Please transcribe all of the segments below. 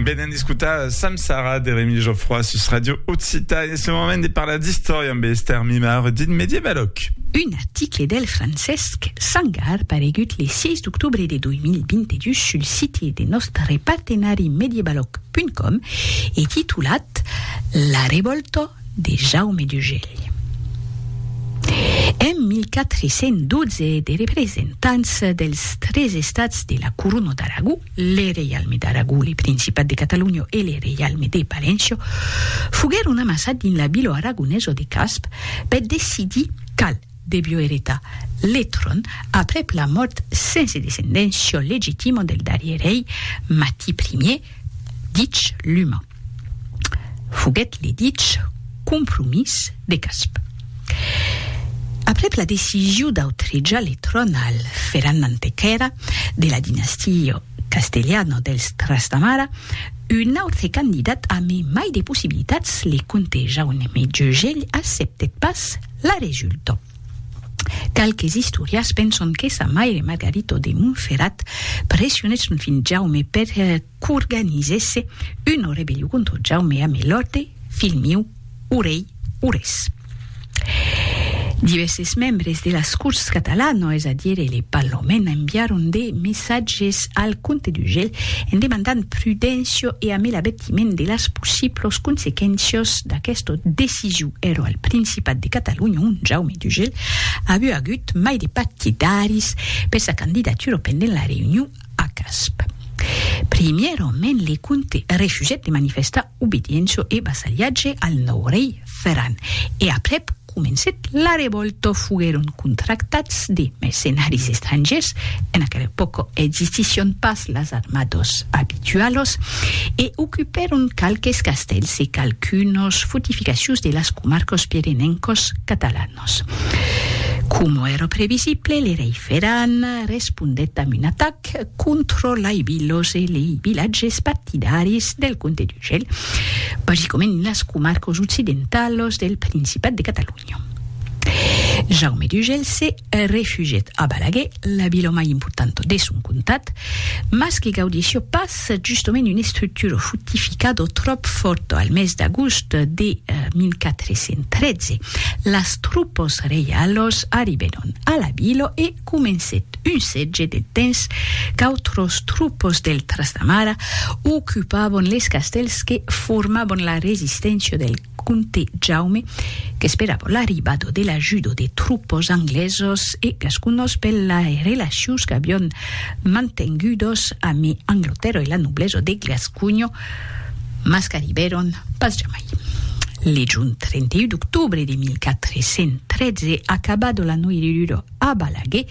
Venen d'escutar Samsara de Remi Geoffroy sus Radio Occità e ce moment de parlar d'istòria amb Esther Mimar dit Medievaloc. Un article del Francesc Sangar paregut le 6 d'octobre de 2022 sul site de nòstre partenari medievaloc.com e titulat La revòlta de Jaume d'Ugèlh. En 1412 de representants dels tres estats de la Corona d'Aragó, le Reialme d'Aragó, le Principat de Catalonha e le Reialme de Paléncia, foguèron amassats dins la vila aragonesa de Casp per decidir qual devió eretar le tròn aprèp la mòrt sense descendéncia legitima del darrier rei Mati Ier, dich Luma. Foguèt le dich compromís de Casp. Aprèp la decision d'autrejar le tròn al Ferran Mantequèra de la dinastia castelhana dels Trastamara, un autre candidat a me mai de possibilitats, le comte Jaume Jegell acceptèt pas la resulta. Qualques istorias penson que sa maire Margarito de Montferrat pressionèt son filh Jaume per qu'organizèsse una rebellion contra Jaume amé l'òrte, filh miu, o rei, o res. Divèrses membres de las Corts catalanas, es a dire le Parlament, enviaron de messatges al comte d'Urgell en demandant prudéncia e amé l'avètiment de las possiblas consequéncias d'aquesta decision. Èra al Principat de Catalonha ont Jaume d'Urgell aviá agut mai de partidaris per sa candidatura pendent la reünion A Casp. Primièrament le comte refusèt de manifestar obediéncia e vassalhatge al nòu rei Ferran e aprèp comencèt la revòlta. Foguèron contractats de mercenaris estrangièrs, en aquela epòca existission pas las armadas abitualas, e ocupèron qualques castèls e qualqu'unas fortificacions de las comarcas pirenencas catalanas. Nos. Coma èra previsible, le rei Ferran respondèt amb un atac contra lei vilas e lei vilatges partidaris del comte d'Urgell, basicament en las comarcas occidentalas del Principat de Catalonha. Jaume d'Urgell se refugièt a Balaguer, la vila mai importanta de son comtat, mas que gaudissia pas se justement un estructuro fortificado tròp fòrto al mes d'agost de 1413. Las troupos reialos arribèron a la vila e comencèt un setge de temps qu'autros troupos del Trastamara ocupavon les castèls que formavon la resisténcia del Comte Jaume, qu'esperava l'arribada de l'ajuda de tropas anglesas e gasconas per las relacions qu'avián mantengudas amé Anglatèrra e la noblesa de Gasconha, mas qu'arribèron pas jamai. Legion, 31 d'octobre de 1413, acabada la noirura, A Balaguer,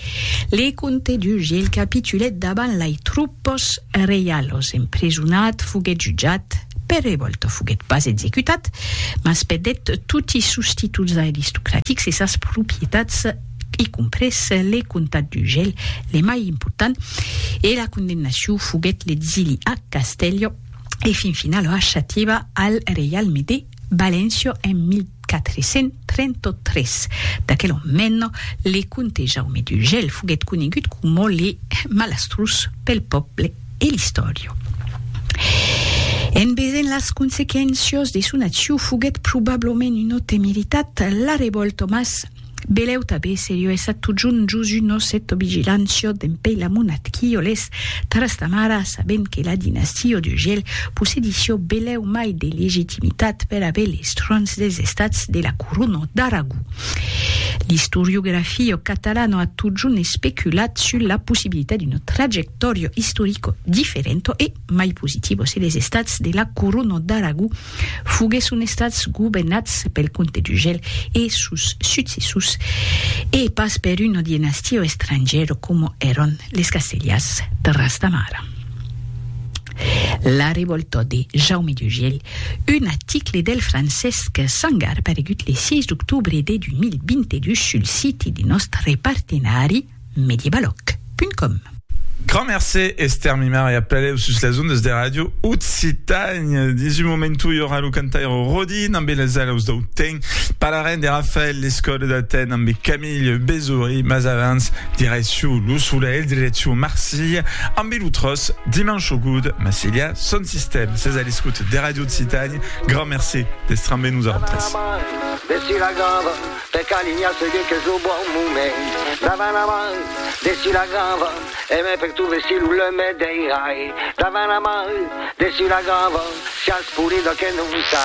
le comte Duge el capitulèt davant lai troupes reialos, emprisonat, foguèt jutjat, per revòlta foguèt pas executat, mas perdèt toti sos títols aristocratics e sas propietats, i comprés le comtat d'Urgell, le mai important, e la condemnacion foguèt l'exili a Castèlho e fin finala a Xativa al reialme de. Valencio en 1433. D'aquel ont mèn, le comte Jaume d'Urgell foguèt conegut coma le malastrós pel pòble e l'istòria. En vesent las consequéncias de son accion foguèt probablament una temeritat, la revòlta mas Beleu tabé serio essa totjun Josu nos eto vigilant siot en pei la monat quio les trastamara sabent que la dinastio de Gel possedisio beleu mai de legitimitat per aver les trons des estats de la Coruno d'Aragó. L'istoriografio catalano a totjun especulat sul la possibilitat d'uno trajectorio istorico differento e mai positivo se les estats de la Coruno d'Aragó Foguèsson estats governats pel comte d'Urgell e sos successors e pas per una dinastia estrangièra coma èran les Castellars de Ras de Mar. La revòlta de Jaume d'Urgell, un article del Francesc Sangar paregut le 6 d'octobre de 2022 sul siti de nòstre partenari, mediebaloc.com. Grand mercé, Esther Mimar, e apeleu sus las ondas de Radio Occitània. Dins un momentu, i aurà lo cantaire Rodin ambe las alaus dau ten. Parlarem de Rafael Lescot d'Aten ambe Camille Bezory, mas avans, direcciu lo Solelh, direcciu Marsilha, ambe lo tròç Dimanche au Goût, Marsilha, son sistèm. Sètz a l'escòt de Radio Occitània. Grand mercé d'èstre ambe nosautres. Per calinha se dit qu'es lo bon moment Davant la mar, dessus la grava E me perturbe si lo lum me deirai Davant la mar, dessus la grava Siás polida que non sai